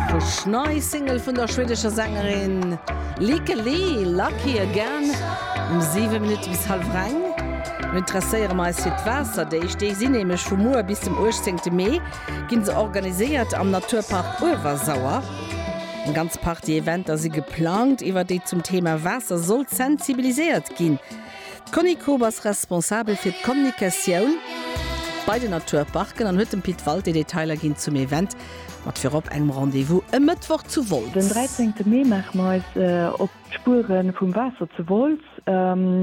Fresh nei Single vun der schwedescher Sängerin Lykke Li, Lucky Again, um 7 Minutte bis hallef reng. Mir interesséiere mer eis fir d'Waasserdeeg, déi sinn nämlech vu muer bis dem 18 Mee gi se organiséiert am Naturpark Uewersauer. Eng ganz Partie Eventer si geplangt, iwwert déi zum Thema Waasser soll sensibiliséiert ginn. D'Conny Koob ass responsabel fir d'Kommunikatioun bei den Naturparken an huet dem Pit Walté Detailer ginn zum Event mat virop engem Rendez-vous e Mëttwoch zu Den Wolz. dräizéngte Mee maache mer eis op d'Spuere vum Waasser zu Wolz.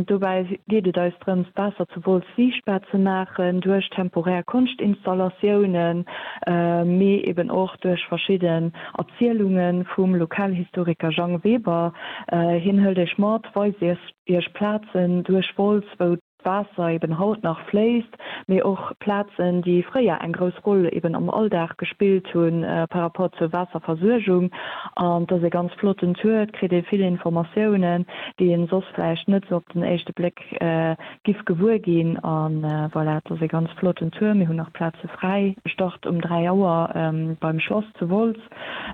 Dobäi geet et eis drëms, d'Waasser zu Wolz siichtbar ze maachen, duerch temporär Konschtinstallatiounen, mee eben och duerch verschidden Erzielunge vum Lokalhistoriker Jang Weber. Hien hëlt Iech mat, weist Iech Iech Plazen duerch Wolz, wou d'Waasser eben haut nach fléisst, mee och Plazen, déi fréier eng grouss Roll eben am Alldag gespillt hu par rapport zur Waasserversuergung. An et ass e ganz flotten Tour, et kritt ee vill Informatiounen, déi een soss vläicht net esou op den éischte Bléck giff gewuer ginn. A voilà, et ass e ganz flotten Tour. Mir hunn nach Plaze fräi. E start um 3 Auer beim Schlass zu Wolz.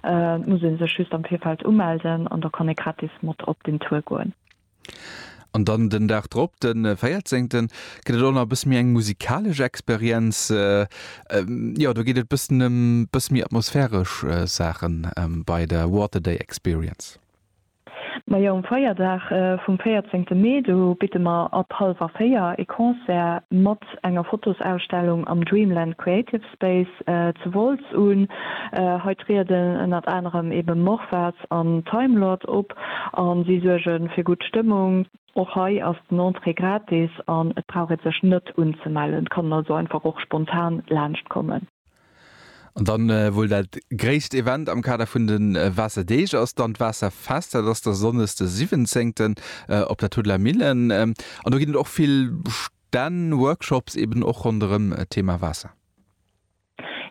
Et muss ee sech just am Virfeld umelden an da kann ee gratis mat op den Tour goen. An dann den Dag drop, de véierzéngten, gëtt et och nach e bësse méi eng musikalesch Experienz. Jo, do geet et e bëssen ëm e bësse méi atmosphäresch Saachen bei der Water Day Experience. Majo, um Feierdag vum 14 te Mee, do bidde mer ab halwer 4 ee Concert mat enger Fotosausstellung am Dreamland Creative Space zu Wolz un. Hei trieden ënnert anerem eben Morphaz an Timelord op a si suerge fir gutt Stëmmung. Och hei ass den Entrée gratis an et brauch ee sech net unzemellen, et kann een also einfach och spontan laanschtkommen. An dann wuel dat gréisst Event am Kader vun de Waasserdeeg ass dann d'Waasserfest. Dat ass da Sonndes de 17 op der Tuddeler Millen. An do ginn et och vill Stänn, Workshops eben och ronderëm d'Thema Waasser.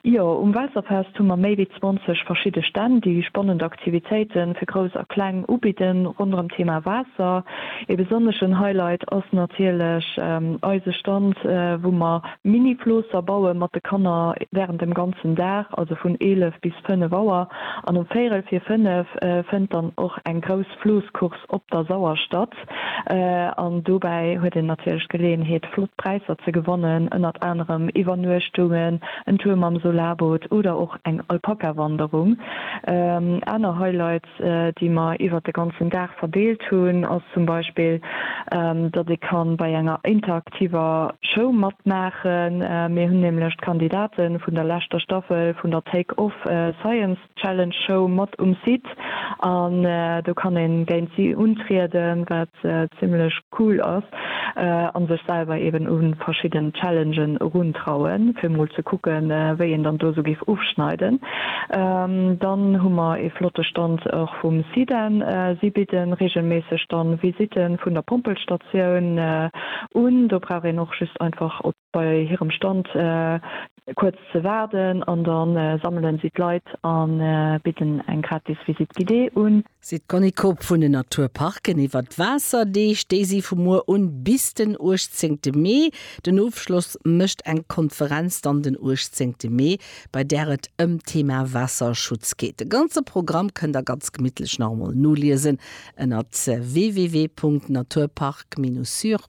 Jo, um Waasserfest hu mer méi wéi 20 verschidde Stänn, déi spannend Aktivitéite fir Grouss a Kleng ubidden ronderëm d'Thema Waasser. Ee besonneschen Highlight ass natierlech eise Stand, wou mer. Mini-Floosser baue mat de Kanner während dem ganzen Dag, also vun 11 bis 5 Auer, an um véirel vir 5 fënnt dann och eng grouss Floosscourse op der Sauer statt an dobäi huet een natierlech d'Geleeënheet flott Präisser ze gewannen, ënnert anerem Iwwernuechtungen, en Tour mam Solarboot oder och eng Alpaka-Wanderung. Aner Highlights. déi mer iwwert de ganzen Dag verdeelt hunn, ass zum Beispill, datt ee ka bei enger interaktiver Show matmaachen. Mir hunn nämlech d'Kandidate vun der leschter Staffel vun der Take Off Science Challenge Show mat um Site an do kann ee géint si untrieden. zimlech cool ass an sech selwer eben u verschidden Challengen eruntrauen fir mol ze kucken wéi een dann do sou géif ofschneiden. Dann hu mer ee flotte Stand och vum Sidan, si bidden regelméisseg dann Visiten vun der Pompelstatioun un, do brauch een och just einfach op bei hirem Stand kuerz ze waarden an da sammelen si d'Leit a bidden eng gratis Visite guidée un. Si d' Conny Koop vun den Natur Parken iwwer d' Waasserdeeg, déi si vu muer un bis den 18 Mee. Den Ofschloss mécht eng Konferenz dann den 18 Mee, bei där et ëm d' Thema Waasserschutz geet. De ganze Programm kënnt der ganz gemittlech nach emol noliesen ënnert www.naturpark-sur.lu.